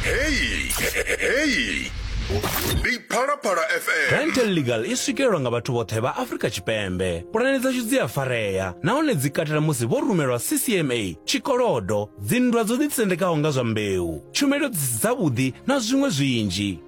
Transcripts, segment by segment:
heyi heyi ndi phalaphala fm Dental Legal i swikelelwa nga vhathu vhoṱhe vha Afrika Tshipembe. Pulane dzashu dzi a farea nahone dzi katela musi vho rumelwa CCMA, tshikolodo, dzinndwa dzo ḓitsendekaho nga zwa mbeu, tshumelo dzi si dzavhuḓi na zwiṅwe zwinzhi.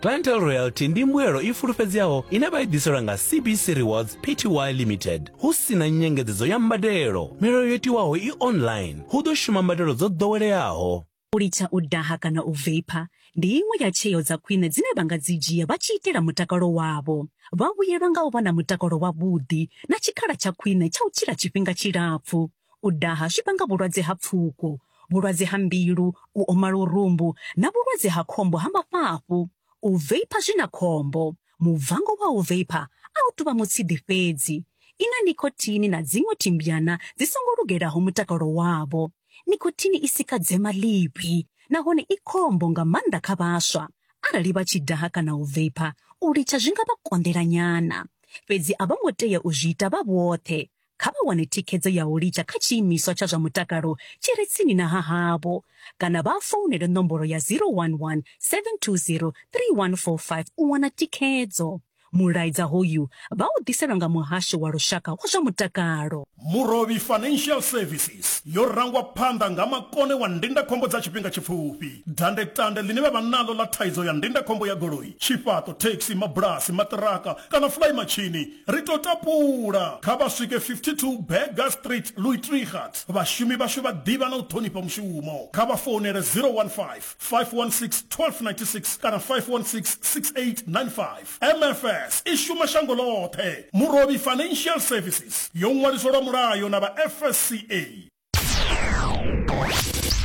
Clientele Royalty ndi mbuelo i fulufhedzeaho ine vha i ḓiselwa nga CBC Rewards Pty Limited hu si na nyengedzedzo ya mbadelo. Milayo yo tiwaho i online, hu ḓo shuma mbadelo dzo ḓoweleaho. U litsha u daha kana u veipha ndi iṅwe ya tsheo dza khwine dzine vha nga dzi dzhia vha tshi itela mutakalo wavho. Vha vhuyelwa nga u vha na mutakalo wavhuḓi na tshikhala tsha khwine tsha u tshila tshifhinga tshilapfu. U daha zwi vhanga vhulwadze ha pfuko, vhulwadze ha mbilu, u oma lurumbu na vhulwadze ha khombo ha mafhafhu. U veipha zwi na khombo. Mubvango wa u veipha a u tou vha mutshidi fhedzi. I na nikhothini na dziṅwe thimbyana dzi songo lugelaho mutakalo wavho. Nikhothini i sika dzema ḽivhi nahone i khombo nga maanḓa kha vhaswa. Arali vha tshi daha kana u veipha, u litsha zwi nga vha konḓela nyana. Fhedzi a vho ngo tea u zwi ita vha vhoṱhe. Kha vha wane thikhedzo ya u litsha kha tshiimiswa tsha zwa mutakalo tshi re tsini na ha havho kana vha founele nomboro ya 011 720 3145 u wana thikhedzo. Mulaedza hoyu vha u ḓiselwa nga Muhasho wa Lushaka wa zwa Mutakalo. Murovhi Financial Services yo rangwa phanḓa nga makone wa ndindakhombo dza tshifhinga tshipfufhi. Dandetande ḽine vha vha naḽo ḽa thaidzo ya ndindakhombo ya goloi, tshifhaṱo, thekhisi, mabulasi, maṱiraka kana fulaimatshini, Ri tou tapula, kha vha swike 52 Burger Street, Luitregat. Vhashumi vhashu vha ḓivha na u ṱhonifha mushumo. Kha vha founele 015 516 1296 kana 516 6895. MFS i shuma shango ḽoṱhe. Murovhi Financial Services yo ṅwaliswa lwa mulayo na vha FSCA.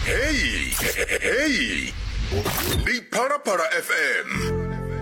Heyi, heyi, ndi Phalaphala FM.